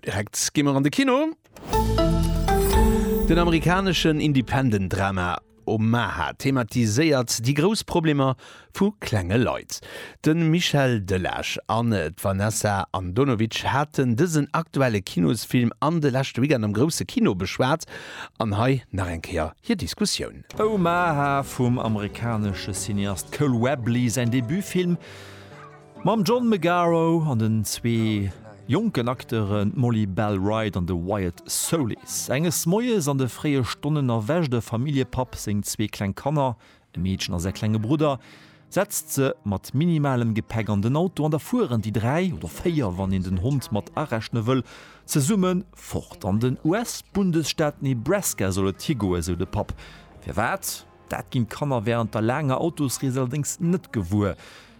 Direkt gi mer an de Kino. Den amerikaneschen Independent-Drama Omaha thematiséiert déi grouss Problemer vu klenge Leit. De Michel Delage an d'Vanessa Andonovic haten dësen aktuelle Kinosfilm an de leschte Weekend am grousse Kino beschwat. An hei nach eng Kéier hir Diskussioun. Omaha vum amerikanesche Cineast Cole Webley säin Debutfilm mam John McGarro an den zwee jonken Akteure Molly Bell Wright an de Wyatt Soulis. Enges Moies an de fréie Stonnen erwächt e Familljepapp seng zwee kleng Kanner, e Meedchen a säi klenge Brudder, Setzt se mat minimalem Gepäck an den Auto an da fueren déi dräi, oder véier wann een den Hond mat arechne wëll, zesumme fort. An den US-Bundesstaat Nebraska soll et higoen, sou de Papp. Firwat? Dat ginn d'Kanner wärend der laanger Autosrees allerdéngs net gewuer.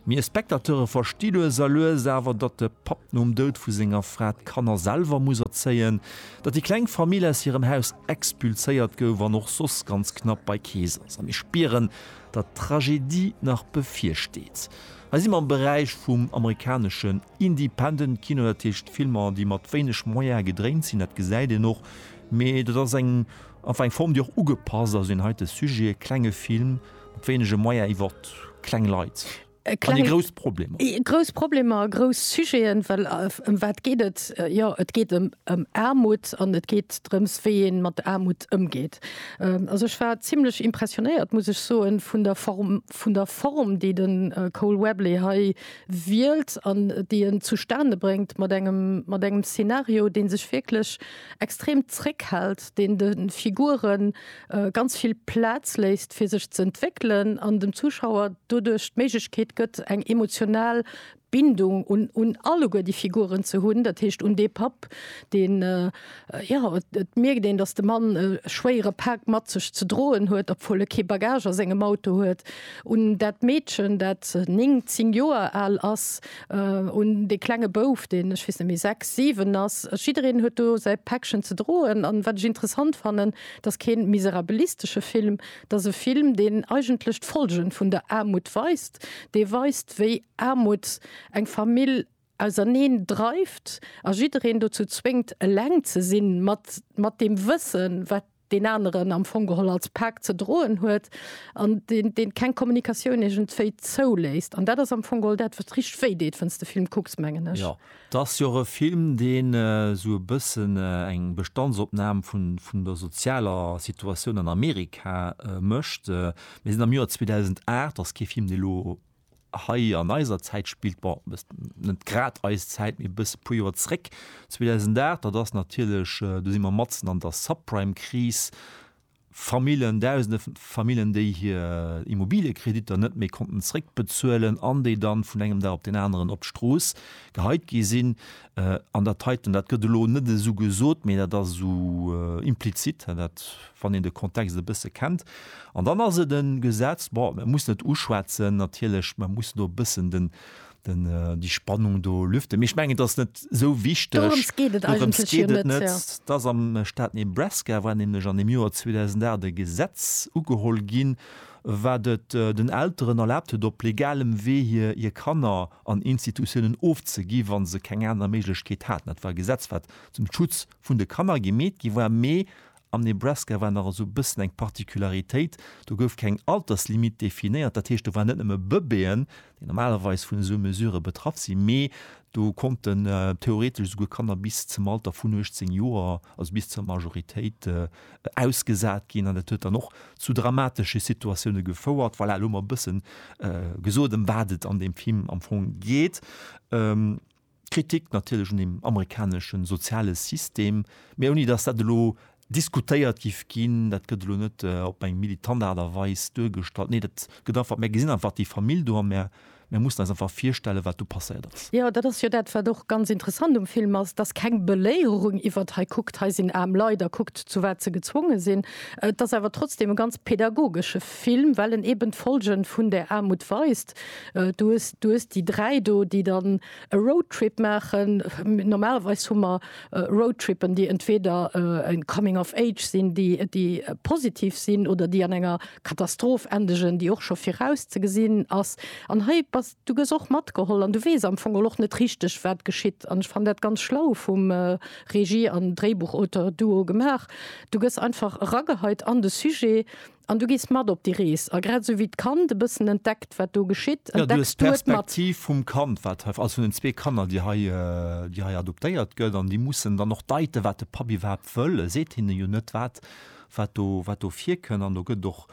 Mee e Spectateure versti lues a lues awer, datt de Papp nom Doud vu senger Fra d'Kanner selwer muss erzéien, datt déi kleng Famill aus hirem Haus expulséiert gouf an och soss ganz knapp bei Kees ass. A mir spieren, datt d'Tragedie nach bevirsteet. Hei si mer am Beräich vum amerikaneschen Independent-Kino, dat heescht Filmer, déi mat wéineg Moyene gedréint sinn. Dat gesäit een och, mee dat ass eng einfach eng Form, déi och ugepasst ass un deen heite Sujet, e klenge Film mat wéinege Moyene iwwer kleng Leit. Äh, kleng, an grouss Problem. Grouss Problemer, grouss Sujeten, well äh, um wat geht et? Äh, ja et geht em um, um Armut an et geht drëms wéi een mat der Armut ëmgeet. Ähm, also ech war ziemlichlech impressionéiert, muss ech so en vun der Form vun der Form, déi den äh, Cole Webley hei wielt an déi en zustane bringt mat engem mat engem Szenario, den sech wirklich extrem zréckhält, den den Figuren ganz vill Plaz léisst fir sech ze entwéckelen an dem Zuschauer doduerch d'Méiglechkeet gëtt eng emotional Bindung un un alleguer déi Figuren ze hunn, dat heescht un dee Papp deen jo et mierkt een datt de Mann e schwéiere Pak mat sech ze droen huet obwuel e kee Bagage a sengem Auto huet, un dat Meedchen dat 9, 10 Joer al ass, un dee klenge Bouf deen ech weess net méi 6, 7 ass. Jiddereen huet do säi Päckchen ze droen an wat ech interessant fannen, 't ass keen miserabilistesche Film, 't ass e Film, deen eigentlech d'Folgen vun der Aarmut weist, dee weist, wéi Aarmut eng Famill auserneen dreift a jiddereen dozou zwéngt, eleng ze sinn, mat mat deem Wëssen, wat deen aneren am Fong geholl als Pak ze droen huet, an deen deen keng Kommunikatioun iergendwéi zouléisst. An dat ass am Fong geholl dat, wat richteg wéi deet, wann s de Film kucks, mengen ech. 't ass jo och e Film, deen esou e bëssen eng Bestandsopnam vun der sozialer Situatioun an Amerika mécht. Mir sinn am Joer 2008, ass kee Film, dee elo hei an eiser Zäit spillt, bon, net grad eis Zäit, mee e bësse, e puer Joer zréck, 2008, dat ass natierlech, do si mer matzen an der Subprime-Kris, Famillen, dausende Famillen, déi hir Immobiliëkreditter net méi konnten zréckbezuelen an déi dann vun engem Dag op deen aneren op d'Strooss geheit gi sinn. An dat heiten, dat gëtt elo net esou gesot, mee dat ass esou implizit, dat, wann een de Kontext e bësse kennt. An dann ass et e Gesetz, bon, mir mussen et uschwätzen natierlech, mir mussen do e bëssen den, den die Spannung do lüfte mech mengen das net so wichteg das am Staat Nebraska war nämlich an dem Joar 2008 de Gesetz ugeholl ginn war det äh, den Elteren erlaabt huet op legalem Wee hier hier Kanner an Institutionen ofzegi wann se keng aner Méiglechkeet haten. Dat war Gesetz wat zum Schutz vun de Kanner gemeet gi war mee Am Nebraska war nach esou e bëssen eng Particularitéit, do gouf keng Alterslimit definéiert. Dat heescht, do waren net nëmme Bëbeeën, déi normalerweis vun esou Mesure betraff sinn, mee do konnten theoretesch esouguer Kanner bis zum Alter vun 18 Joer, also bis zur Majoritéit, ausgesat ginn. An dat huet dann och zu dramatesche Situatioune gefouert. Voilà, elo mol e bësse gesot, ëm wat et an deem Film am Fong geet. Kritik natierlech un dem amerikanesche soziale System, mä ouni datt dat elo diskutéiert géif ginn. Dat gëtt elo net op eng militant Aart a Weis duergestallt. Nee, dat gëtt einfach, mär gesinn einfach déi Famill do a mär mussen eis einfach virstellen, wat do passéiert ass. Jo, dat ass jo dat, wat och ganz interessant um Film ass, dass keng Beléierung iwwert hei kuckt, hei sinn aarm Leit a kuckt, zu wat se gezwonge sinn. Et ass awer trotzdeem e ganz pädagogesche Film, well en eeben d'Folge vun där Aarmut weist. Du hues, du hues déi dräi do, déi dann e Roadtrip maachen. Normalerweis hu mer Roadtrippen, déi entweder e Coming of Age sinn, déi, déi positiv sinn oder déi an enger Katastroph endegen, déi och scho viraus ze gesinn ass. An hei bass, du gëss och matgeholl an du weess am Fong och net richteg, wat geschitt. An ech fannen dat ganz schlau vum Regie an Dréibuchauteur-Duo gemaach. Du gëss einfach erageheit an de Sujet. An du gees mat op déi Rees. A grad esou wéi d'Kand e bëssen entdeckt, wat do geschitt, entdecks du et mat. Jo, du hues d'Perspektiv vum Kand, wat hei, also vun den zwee Kanner, déi hei, déi hei adoptéiert gëtt. An déi mussen dann och deiten, wat de Papp iwwerhaapt wëll. E seet hinne jo net, wat, wat do, wat do virkënn. An do gëtt et och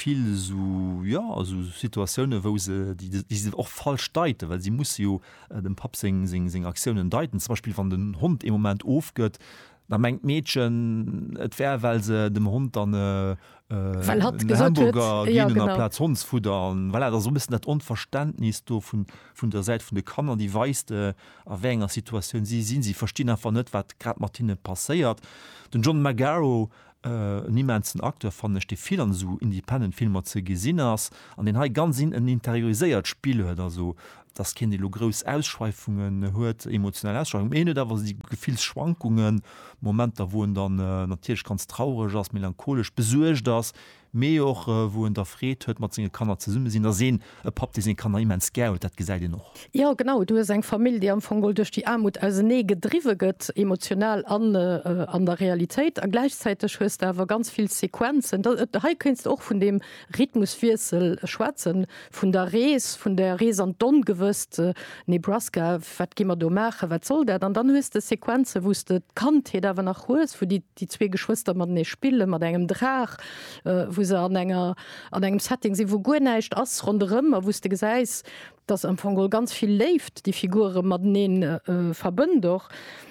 vill esou, jo, esou Situatiounen, wou se, déi, déi se och falsch deiten, well si musse jo dem Papp seng, seng, seng Aktiounen deiten. Zum Beispill, wann den Hond ee Moment ofgëtt, Da mengt d'Meedchen, et wär, well se dem Hond dann e Hamburger ginn hunn aplaz Hondsfudder. An voilà, et ass esou e bëssen dat Onverständnis do vun der Säit vun de Kanner, déi weist, a wéi enger Situatioun si sinn. Si verstinn einfach net, wat grad mat hinne passéiert. Den John Magaro En immensen Acteur fannen ech, dee vill an esou independent Filmer ze gesinn ass an deen hei ganz en interioriséiert Spill huet, also dass keen dee lo grouss Ausschweifungen huet, emotional Ausschweifungen, mee hien huet awer esou Gefillsschwankungen, Momenter wou en dann natierlech ganz traureg ass, melancholesch, besuergt ass, mee och wou en da Freed huet mat senge Kanner zesumme sinn, ass een e Papp dee seng Kanner immens gär huet, dat gesäit een och. Jo genau, du hues eng Famill déi am Fong duerch déi Aarmut ausenee gedriwwe gëtt, emotional an an der Realitéit, a gläichzäiteg hues de awer ganz vill Sequenzen, hei kéints de och vun deem Rhythmuswiessel schwätzen, vun der Rees, vun der Rees an d'Ongewësst, Nebraska, wat gi mer do maachen, wat soll dat, an dann hues de Sequenzen wou s de d'Kandheet awer nach hues, wou déi. déi zwee Geschwëster matenee spille mat engem Draach, wou se an enger, an engem Setting sinn, wou guer näischt ass ronderëm a wou s de gesäis, dass am Fong geholl ganz vill Léift déi Figure matenee verbënnt och.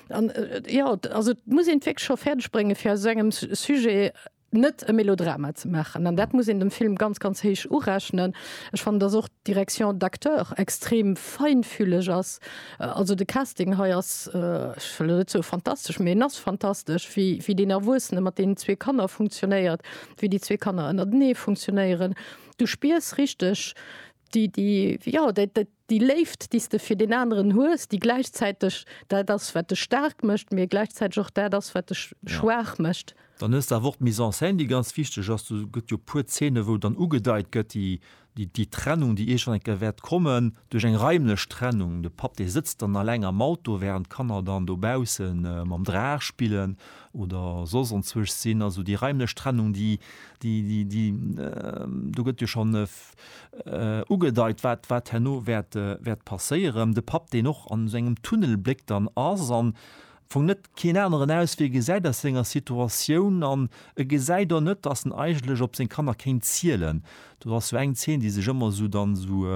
An jo, also et muss een et wierklech scho fäerdeg bréngen, fir aus esou engem Sujet net e Melodrama ze maachen. An dat muss een dem Film ganz, ganz héich urechnen. Ech fannen, dass och d'Direction d'acteurs extrem feinfühleg ass. Also de Casting hei ass, ech wëll elo net soe fantastesch, mee en ass fantastesch, wéi, wéi deen Erwuessene mat deenen zwee Kanner funktionéiert, wéi déi zwee Kanner ënnertenee funktionéieren. Du spiers richteg déi, déi, jo, dat, dat, déi Léift, déi s de fir deen aneren hues, déi gläichzäiteg dat ass, wat dech staark mécht, mee gläichzäiteg och dat ass, wat dech schwaach mécht. Dann hues de awer och d'Mise en scène, déi ganz wichteg ass. Do gëtt jo e puer Zeene, wou dann ugedeit gëtt, déi déi Trennung, déi iergend eng Kéier wäert kommen, duerch eng raimlech Trennung, de Papp, dee sëtzt dann alleng am Auto, wärend d'Kanner dann dobausse mam Draach spillen oder soss onzwuecht sinn. Also déi raimlech Trennung, déi, déi, déi, déi, do gëtt jo schonn ugedeit, wat, wat herno wäert, wäert passéieren. De Papp, deen och an esou engem Tunnel bléckt an ass an Fong net keen aneren Auswee gesäit aus senger Situatioun an e gesäit och net, dass en eigentlech op seng Kanner kéint zielen. Do ass sou eng Zeen, déi sech ëmmer sou dann sou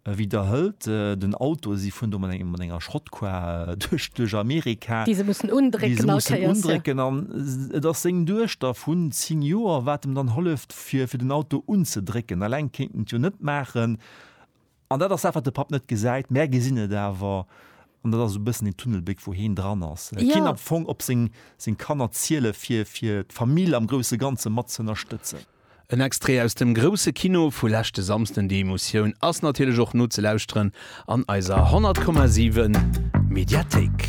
widderhëlt, den Auto, si fueren do mat engem mat enger Schrottkar duerch duerch Amerika, déi se mussen undrécken an et ass seng Duechter vun 10 Joer wat em dann holleft fir fir den Auto unzedrécken. Alleng kéint en et jo net maachen. An dat ass dat, wat de Papp net gesäit. Mär gesinn et awer. An dat ass esou e bëssen deen Tunnelbléck, wou heen dran ass. Et kéint am Fong op seng, seng Kanner ziele fir, fir d'Famill am grousse Ganze mat ze ënnerstëtzen. En Extrait aus dem Grousse Kino vu leschte Samsden. Déi Emotioun ass natierlech och nozelauschteren an eiser 100,7 Mediathéik.